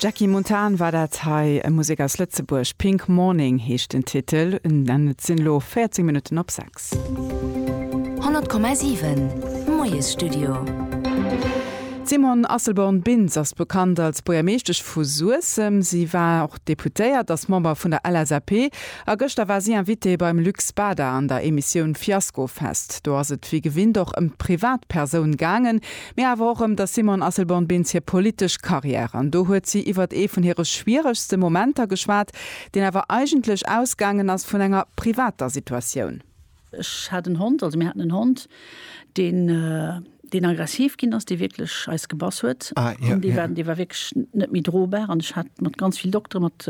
D'Jackie Montan war dat hei, Musek aus Lëtzebuerg. Pink Morning heescht den Titel an et sinn elo 14 Minutten op 6. 100,7 Moiesstudio. D'Simone Asselborn-Bintz ass bekannt als Buergermeeschtesch vu Suessem. Si war och Deputéiert, ass Member vun der LSAP a gëschter war si Invitée beim Luc Spada an der Emissioun Fiaskofest. Do ass et wéi gewinnt och ëm d'Privatpersoun gaangen, mee awer och ëm der Simone Asselborn-Bintz hir politesch Carrière. An do huet si iwwert ee vun hire schwieregste Momenter geschwat, deen awer eigentlech ausgaangen ass vun enger privater Situatioun. Ech hat en Hond, also mir haten en Hond, deen, deen aggressiv ginn ass, dee wierklech eis gebass huet an dee war, dee war wierklech net méi drobar an ech hat mat ganz vill Doktere, mat.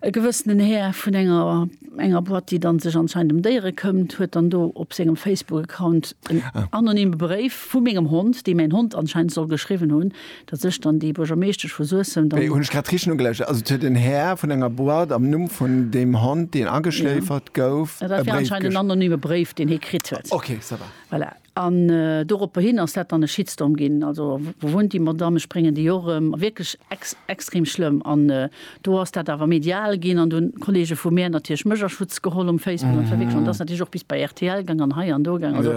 E gewëssenen Här vun enger enger Boîte, déi dann sech anscheinend em Déiere këmmt, huet dann do op sengem Facebook-Account en anonyme Bréif vu mengem Hond, dee mäin Hond anscheinend soll geschriwwen hunn, datt ech dann déi Buergermeeschtesch vu Suessem dann. Hunn ech grad richteg nogelauschert? Also et huet en Här vun enger Boîte am Numm vun deem Hond, deen ageschléifert gouf, e Bréif geschriwwen? Dat war anscheinend en anonyme Bréif, deen hie kritt huet. Okay, ça va. Voilà. An doropperhin ass dat dann e Shitstorm ginn, also wou wunnt déi Madamm, ech bréngen déi och erëm, wierklech extrem schlëmm. An do ass dat awer medial ginn an do hunn d'Kolleege vu mär natierlech mech a Schutz geholl um Facebook an verwickelt an dat ass natierlech och bis bei rtl gaang an hei an do gaang. Also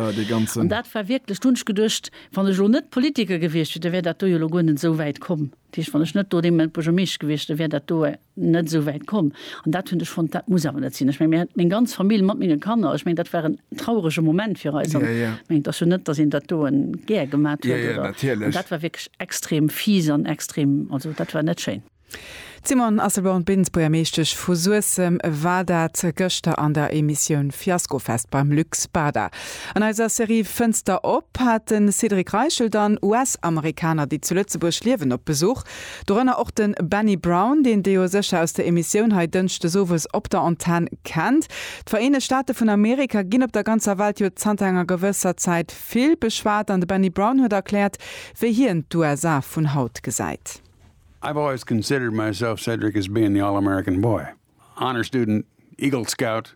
an dat war wierklech, do hunn ech geduecht, wann ech elo net Politiker gewiescht wier, da wär dat do jo elo guer net esou wäit komm. Dat heescht, wann ech net do dee Moment Buergermeeschter gewiescht, da wär dat do net esou wäit komm. An dat hunn ech fonnt, dat muss awer net sinn. Ech meng, mir hat meng ganz Famill mat menge Kanner, ech meng, dat war en traurege Moment fir eis. An ech mengen, et ass jo net, datt een dat do gär gemat huet. Oder dat war wierklech extrem fies an extrem, also dat war net schéin. D'Simone Asselborn-Bintz, Buergermeeschtesch vu Suessem, war dat gëschter an der Emissioun Fiaskofest beim Luc Spada. An eiser Serie Fënster op hat de Cédric Reichel dann US-Amerikaner, déi zu Lëtzebuerg liewen, op Besuch. Dorënner och de Benny Brown, deen Dir jo sécher aus der Emissioun hei Dënschdes owes op der Antenn kennt. D'Vereenegt Staate vun Amerika ginn op der ganzer Welt jo zanter enger gewësser Zäit vill beschwat an de Benny Brown huet erkläert, wéi hien d'USA vun haut gesäit. I've always considered myself Cedric as being the all-American boy, honor student, Eagle Scout,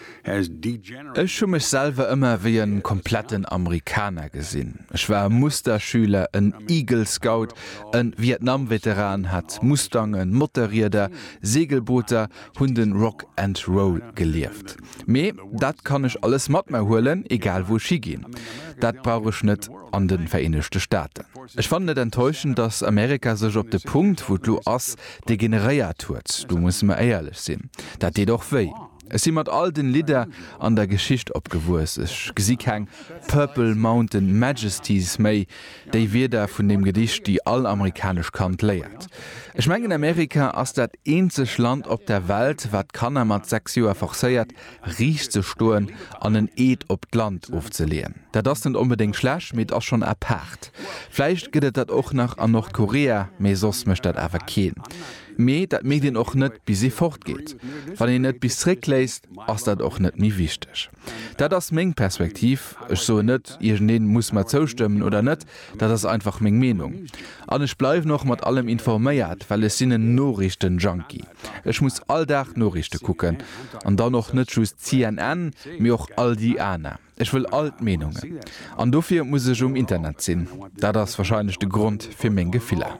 Ech hu mech selwer ëmmer wéi e kompletten Amerikaner gesinn. Ech war e Musterschüler, en Eagle Scout, e Vietnam-Veteran, hat Mustangen, Motorrieder, Segelbooter, hunn de Rock and Roll gelieft. Mee dat kann ech alles mat mer huelen, egal wou ech higinn. Dat brauch ech net an de Vereenegte Staaten. Ech fannen et enttäuschend, datt Amerika sech op de Punkt, wou et lo ass, degeneréiert huet. Do musse mer éierlech sinn. Dat deet och wéi. Ech si mat all den Lidder an der Geschicht opgewuess. Ech gesi keng Purple Mountain Majesties méi, déi Wierder vun deem Gedicht, déi all amerikanesch Kand léiert. Ech mengen Amerika ass dat eenzeg Land op der Welt, wat Kanner mat 6 Joer forcéiert riicht ze stoen an en Eed op d'Land ofzeleeën. Dat ass net onbedéngt schlecht, mee et ass schonn apaart. Vläicht gëtt et dat och nach an Nordkorea, mee soss mécht dat awer keen. Mee dat mierkt een och net bis ee fortgeet. Wann een et bis zréckléisst, ass dat och net méi wichteg. Dat ass meng Perspektiv. Ech soen net, iergendeen muss mer zoustëmmen oder net, dat ass einfach meng Meenung. An ech bleiwen och mat allem informéiert, well ech sinn en Noriichten-Junkie. Ech muss all Dag Noriichte kucken. An dann och net just CNN, mee och all déi aner. Ech wëll all d'Meenungen. An dofir muss ech um Internet sinn. Dat ass wahrscheinlech de Grond fir meng Gefiller.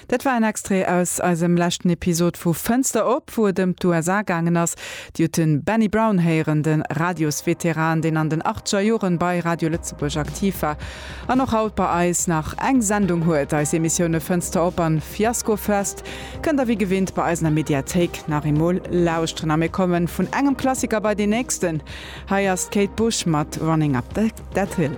Dat war en Extrait aus eisem leschten Episod vu Fënster op, wou et ëm d'USA gaangen ass. Dir hutt de Benny Brown héieren, de Radiosveteran, deen an den achtzeger Joren bei Radio Lëtzebuerg aktiv war An och haut bei eis nach eng Sendung huet eis Emissioune Fënster op an Fiasko Fest kënnt der wéi gewinnt bei eisener Mediathéik nach eemol lauschteren. A mir kommen vun engem Klassiker bei deen nächsten. Hei ass d'Kate Bush mat Running Up That Hill.